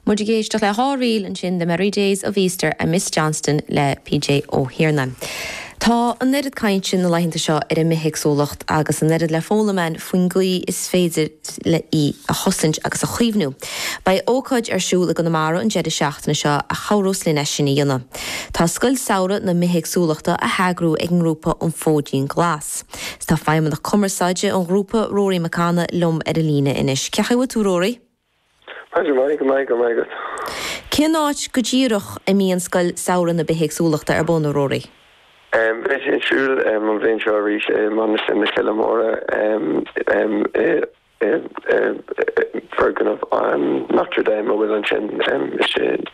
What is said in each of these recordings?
Muid ag éisteacht le dhá ríl ansin, The Merry Days of Easter and Miss Johnston le PJ Ó hIarnáin. Tá an oiread cainte na laethanta seo ar an mbithéagsúlacht agus an oiread le foghlaim ann faoin gcaoi is féidir í a chosaint agus a chaomhnú. Beidh ócáid ar siúl i gConamara an deireadh seachtaine seo a chabhrós linn é sin a dhéanamh. Tá Scoil Samhraidh na Bithéagsúlachta á heagrú ag an ngrúpa An Fóidín Glas. Tá Feidhmeannach Cumarsáide an ghrúpa, Rory Mac Cana, liom ar an líne anois. Cén chaoi a bhfuil tú, Rory? Go maith, go raibh maith agat. Cén áit go díreach a mbíonn Scoil Samhraidh na Bithéagsúlachta ar bun, a Rory? Beidh sé ar siúl an bhliain seo arís i Mainistir na Coille Móire i. bhfoirgneamh Notre Dame a bhfuil ansin istigh in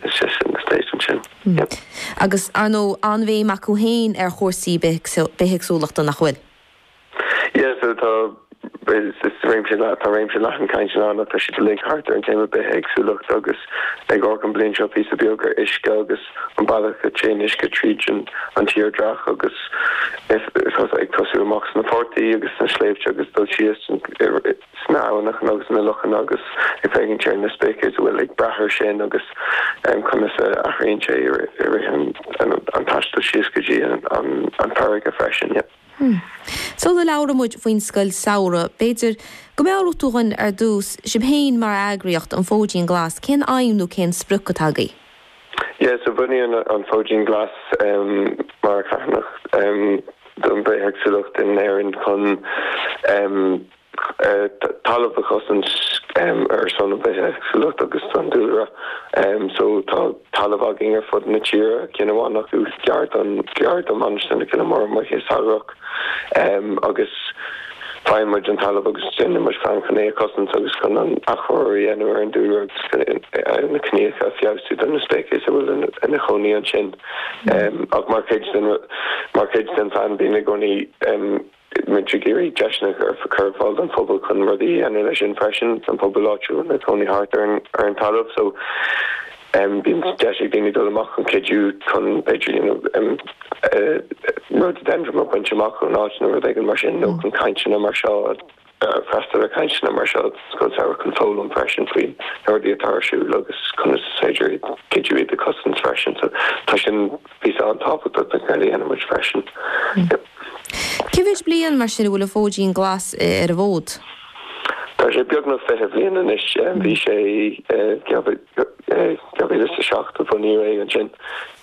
the estate ansin. Agus, ar ndóigh, an-bhéim acu féin ar chúrsaí bithéagsúlachta, nach bhfuil? Yeah, so tá, is réimse leathan, tá réimse leathan cainteanna ann, tá siad uilig thart ar an téama bithéagsúlacht agus ag amharc an bhliain seo píosa beag ar uisce agus, an bealach a dtéann uisce tríd an tírdhreach agus ag tosú amach sna portaigh agus sna sléibhte agus ag dul síos sna abhaineacha agus sna lochanna agus ag féachaint ar na speicis a bhfuil ag brath ar sin agus conas a athraíonn sé i rith an taistil síos go dtí an farraige freisin. Sula labhraímid faoin Scoil Samhraidh, b'fhéidir go meabhródh tú dhuinn ar dtús, sibh féin mar eagraíocht, An Fóidín Glas, cén aidhm nó cén sprioc atá agaibh? Yeah, so bunaíodh an Fóidín Glas mar charthanacht don bhithéagsúlacht in Éirinn chun talamh a chosaint ar son an bhithéagsúlacht agus don dúlra. So tá talamh againn ar fud na tíre, ceann amháin acu gar do Mhainistir na Coille Móire amuigh sa Ghearrach agus. Faigheann muid an talamh agus déanann muid plean chun é a chosaint agus chun an athchóiriú a dhéanamh ar an dúlra agus ar na gnáthóga a feabhsú do na speicis a bhfuil ina chónaí ansin. Ach mar chuid den phlean bíonn i gcónaí muid ag iarraidh deiseanna a chur ar fáil don phobal chun rudaí a dhéanamh leis sin freisin, don phobal áitiúil atá ina chónaí thart ar an talamh. Bíonn deis ag daoine dul amach chun cuidiú chun b'fhéidir you know rhododendron a bhaint amach ón áit nó rud éigin mar sin nó chun cainteanna mar seo a freastal ar cainteanna mar seo scoil samhraidh chun foghlaim freisin faoi rudaí atá ar siúl agus conas is féidir iad cuidiú iad a cosaint freisin so tá sin píosa an-tábhachtach ag ar a dhéanann muid freisin. Cé mhéid bliain mar sin a bhfuil an Fóidín Glas ar an bhfód? Tá sé beagnach fiche bliain anois, bhí sé i 2007 a bunaíodh é ansin,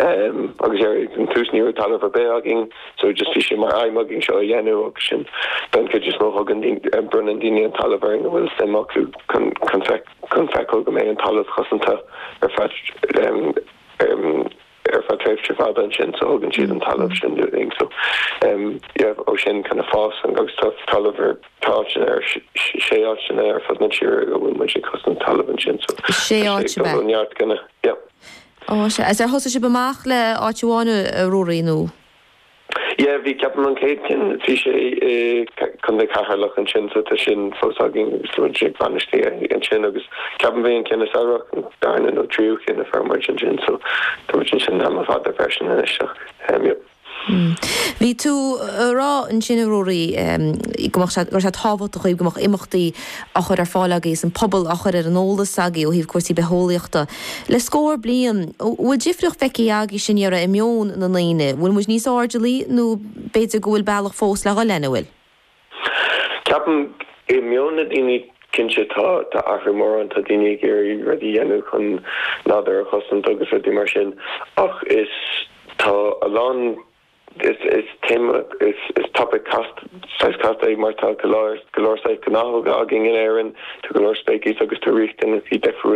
agus ar an tús ní raibh talamh ar bith againn, so just bhí sé mar aidhm againn seo a dhéanamh agus sin don chuid is mó thugann daoine, bronnann daoine an talamh orainn a bhfuil suim acu chun feiceáil go mbeidh an talamh cosanta ar feadh ar feadh tréimhse fada ansin, so thugann siad an talamh sin linn, so you know ó sin kind of fás ann agus tá talamh ar tá áiteanna ar sé áiteanna ar fud na tíre a bhfuil muid ag cosaint talamh ansin, so sé áit a bheith. tá neart gona, yeah. Ó, is é ar thosaigh sibh amach le áit amháin, Ruairí, nó? Yeah, bhí ceapaim an chéad cheann, bhí sé i Contae Cheatharlach ansin so tá sin fós againn agus tá muid ag bainistiú é ansin agus ceapaim bhí an ceann i Sáraitheach an darna nó tríú ceann a fuair muid ansin so tá muid ansin am fada freisin anois so um yep. Bhí tú a rá ansin a Ruairí, go mbeadh sé, go raibh sé tábhachtach go mbeadh imeachtaí á chur ar fáil agaibh is an pobal á chur ar an eolas agaibh ó thaobh cúrsaí bitheolaíochta le scór bliain. An bhfuil difríocht feicthe agaibh, a Ruairí, i meon na ndaoine? An bhfuil muid níos airdeallaí nó b'fhéidir go bhfuil bealach fós le dhul linn, an bhfuil? Ceapaim, i meon na ndaoine, cinnte tá athrú mór ann, tá daoine ag iarraidh rudaí a dhéanamh chun nádúr a chosaint agus rudaí mar sin ach is tá a lán, Is topaic casta, saghas casta, é mar tá go leor saghas gnáthóga againn in Éirinn, tá go leor speiceas agus tá riachtanaisí difriúla.